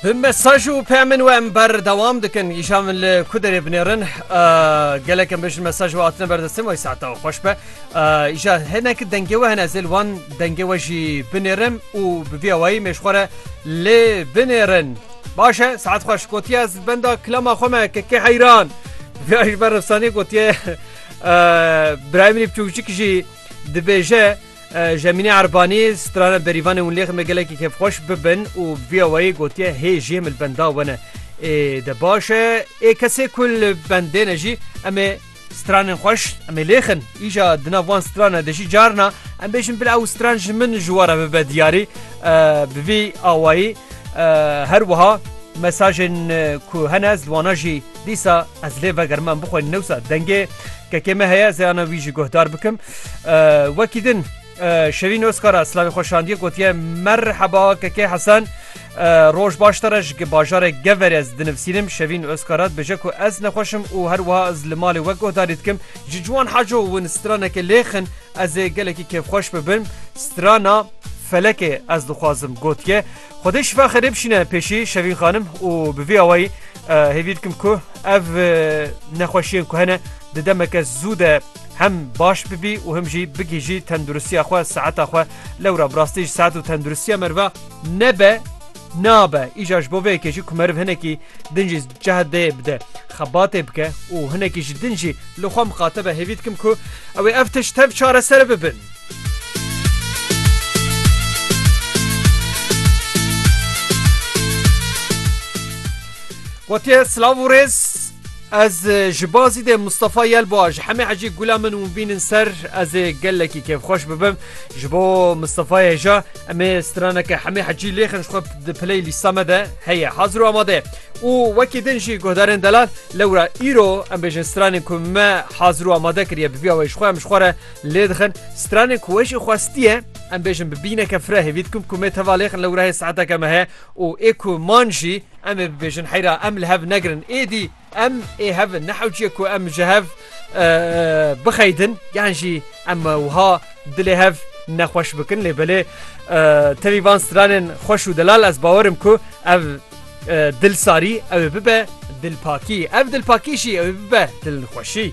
Bi mesaj û peymin we em berdewam dikin îşan min li ku derê binêrin gelek em bijin mesaj we hatine berdestin wey saeta xweş be îşa hinek dengê we hene zêl wan dengê we jî binêrin û bi vî awayî mêşxwere lê binêrin baş e saet xweş gotiye ez benda kilama xwe me kekê heyran vê ji ber efsanê gotiye birayê min î biçûkcik jî dibêje Jemîne Erbanî, strana berîvanên Wlêxê me gelekî kêfxweş bibin û bi vîya wayî gotiye hê jê min li benda we ne. Ê de baş e. Ê kesê ku li bendê ne jî em ê stranên xweş em ê lêxin. Îja di nav wan stran e de jî carna em bêjin bila ew stran ji min ji we re bibe diyarî. Bi vî awayî her wiha mesajên ku hene ez li wana jî Dîsa ez lê vegerime em bixwînin newsa dengê kekê me heye zeyana wî jî guhdar bikim wekî din Şevîn Oskara Slavî xweşandiye gotiye merheba kekê Hesen roj baş te ji bajarê gever ez dinivsînim Şevîn Oskara bije ku ez nexweşim û her wiha ez li malê we guhdarî dikim ji ciwan heco win straneke lêxin ez ê gelekî kêfxweş bibim strana felekê ez dixwazim gotiye Xwedê şifa xêrê bişîne pêşî Şevîn xanim û bi vî awayî hêvî dikim ku ev nexweşiyên ku hene di demeke zû de hem baş bibî û him jî bigihîjî tenduristiya xwe saeta xwe lewra bi rastî jî saet û tenduristiya meriva nebe nabe îcar ji bo vê yekê jî ku meriv hinekî din jî cehd dê bide xebatê bike û hinekî ji din jî li xwe miqate be hêvî dikim ku ewê ev tişt tev çareser bibin. Gotiye silav û rêz ez ji bazî dê Mustafa Yelba ji hemê hecî gula min û bînin ser ez ê gelekî kêfxweş bibim ji bo Mustafa hêja em ê straneke hemê hecî lêxin xwe di piley lîsta me de heye hazir û amade û wekî din jî guhdarên delal lewra îro em bêjin stranên ku me hazir û amade kiriye bi vîya wê ji xwe em ji xwe re Lê dixin stranên ku we jî xwestiye em bêjin bi bîneke fira hêvî dikim ku mêd hevalê xin lewrehê saeteke me heye û ê ku man jî em ê bibêjin heyra em li hev negirin êdî em ê hev in nehewciye ku em ji hev bixeydin yan jî em wiha dilê hev nexweş bikin lê belê tevî van stranên xweş û delal ez bawerim ku ev dilsarî ew ê bibe dilpakî ev dilpakî jî ew ê bibe dilxweşî.